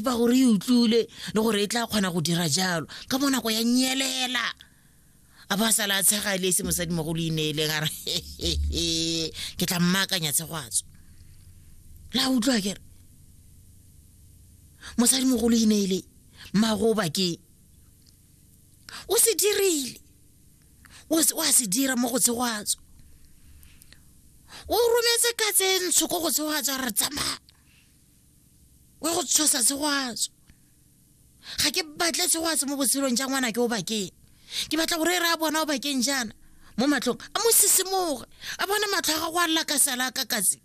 ba gore e utlwile le gore e tla kgona go dira jalo ka mo nako ya nyelela a ba sala a tshega le se mosadi mo go le ineeleng a re ke tla mmaakanya tshegwatso la utlwa kere mosadi mo go le ineele mmago bakeng o se dirile o a se dira mo go tshegwatso o rometse ka tse ntsho ko go tshegwatso a re tsamaya wa go tshosa segwatso ga ke batle segwatso mo botshelong ja ngwana ke o bakeng ke batla gore e re a bona o bakeng jaana mo matlhong a mo sisimoge a bona matlho a gago a lla ka sala ka katse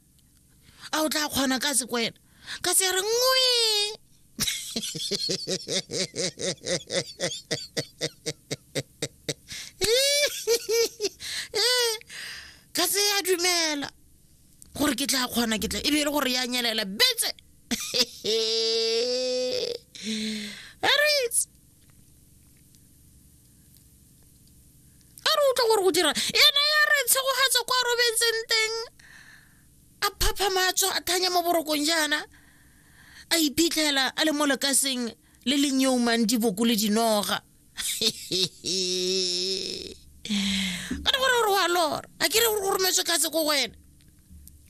a o tla kgona ka se kwena ka se re ngwe ka se ya dumela gore ke tla kgona ke tla e be e le gore ya nyelela betse aris a re utlwa gore go dira ena ya re tshegogatsa kwa robetseng teng a phapha matso a thanya mo borokong jaana a iphitlhela a le mo lekaseng le le nyeumang diboko le dinoga ka na gore gore wa lora a ke re gore go rometswe katse ko go wena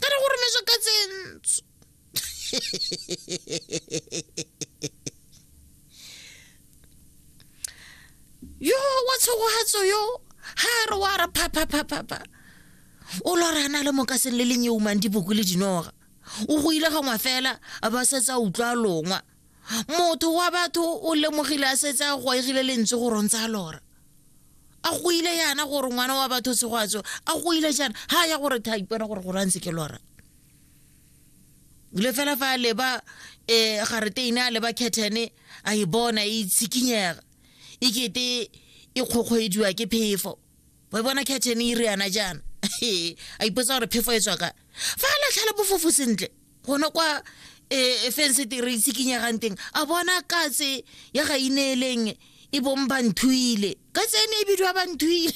ka na go rometswe katse ntsho yo wa tshogogatso yo ga re wa re phaphaphapha o lora a na le mokaseng le lenyeumang diboko le dinoga o go ile gangwe fela a ba setse a utlwa longwa motho wa batho o lemogile a setse a goegile lentswe go rontsa a lora a go ile yana gore ngwana wa batho segwatso a go ile jana ga ya gore tha ipona gore gore a ntse ke lora le fela fa a leba um gareteine a leba kethene a e bona e itshikinyega e kete e kgokgwediwa ke phefo wa e bona catchen e ire yana jaana a ipotsa gore phefo e tswa ka fa a latlhela bofofo sentle gone kwa e, e fense teng re itshikinyegang teng a bona katse ya ga ineeleng e bong banthuile ka tsene e bidiwa banthuile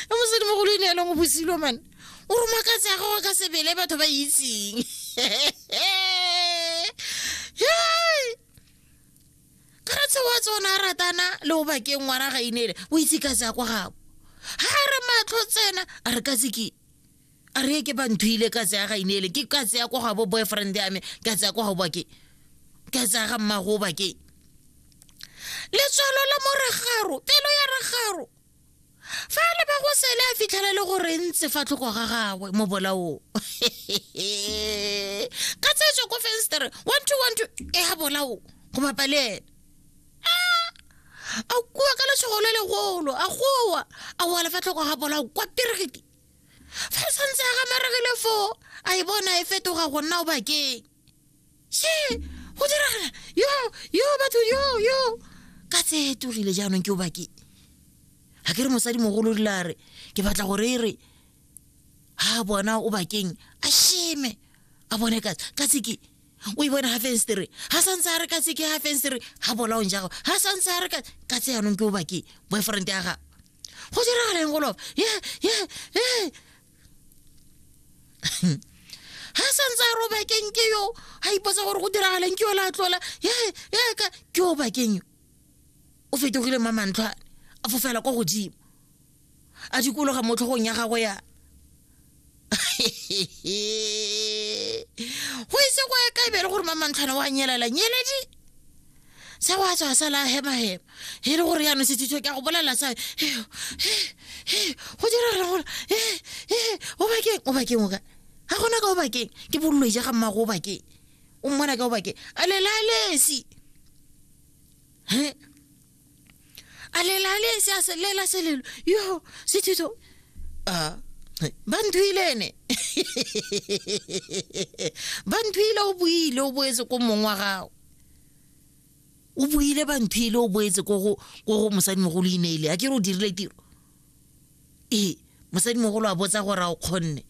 a mosedimogolo e neelong o bosilo mane o roma katse ya gago ka sebele batho ba itseng kgatsho wa tsona a ratana le o bakeng ngwana ga inele o itse ka tsaya kwa gabo ga a re matlho tsena a re ka tseke a re ke ba nthuile ka tsaya ga inele ke ka tsaya kwa gabo boyfriend ya me ka tsaya kwa gabo bakeng ka tsaya ga mmago bakeng letswalo la mo ragaro pelo ya ragaro fa a leba go sele a fitlhela le gore ntse fa tlhoko ga gagwe mo bolaong ka tsetswe ko fenstere one two one two e ga bolao go bapa le ene a kua ka letshogo le legolo a gowa a oa lefa tlhoko ga bolao kwa peregiti fa santse a gamaregile foo a e bona e fetoga go nna o bakeng she go diragala yo yo batho yo yo ka tse togile jaanong ke o bake ga ke re mosadi mogolo dila re ke batla gore e re ga bona o bakeng a sheme a bone ka tse ke o e bone ga fenstere ga santse a re ka tse ke ga fenstere ga bolaong jago ga santse a re ka tse yanong ke o bake boyfriend ya gago go diragala eng golofa ye ye ye ha santse a robakeng ke yo a ipotsa gore go diragaleng ke yo la tlola yaka ke yo bakeng yo o fetogile ma mantlhwane a fofela kwa godimo a dikologa mo tlhogong ya gago ya go ise go ya kaebele gore ma mantlhwane wa nyelela nyeledi sa wa tswa sa la hema hema e le gore yaanong sethitho ke a go bolelela sa go dira re gore o bakeng o bakeng o ka ga gona ka o bakeng ke bololoi ja ga mmago o bakeng o mmona ka o bakeng a lelalesi a lelalesi a selela selelo yo sethitho a ba nthuile ene ba nthuile o buile o boetse ko mong wa gago o buile bantho ile o boetse ko go ko go mosadimogolo ineile a ke re o dirile tiro ee mosadimogolo a botsa gore a o kgonne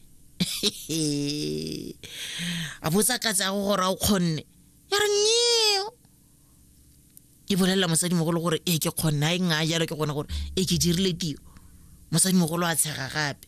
a botsa ka tsago gore a o kgonne ya re nyeo e bolelela mosadimogolo gore e ke kgonne a e nngaya jalo ke gone gore e ke dirile tiro mosadimogolo a tshega gape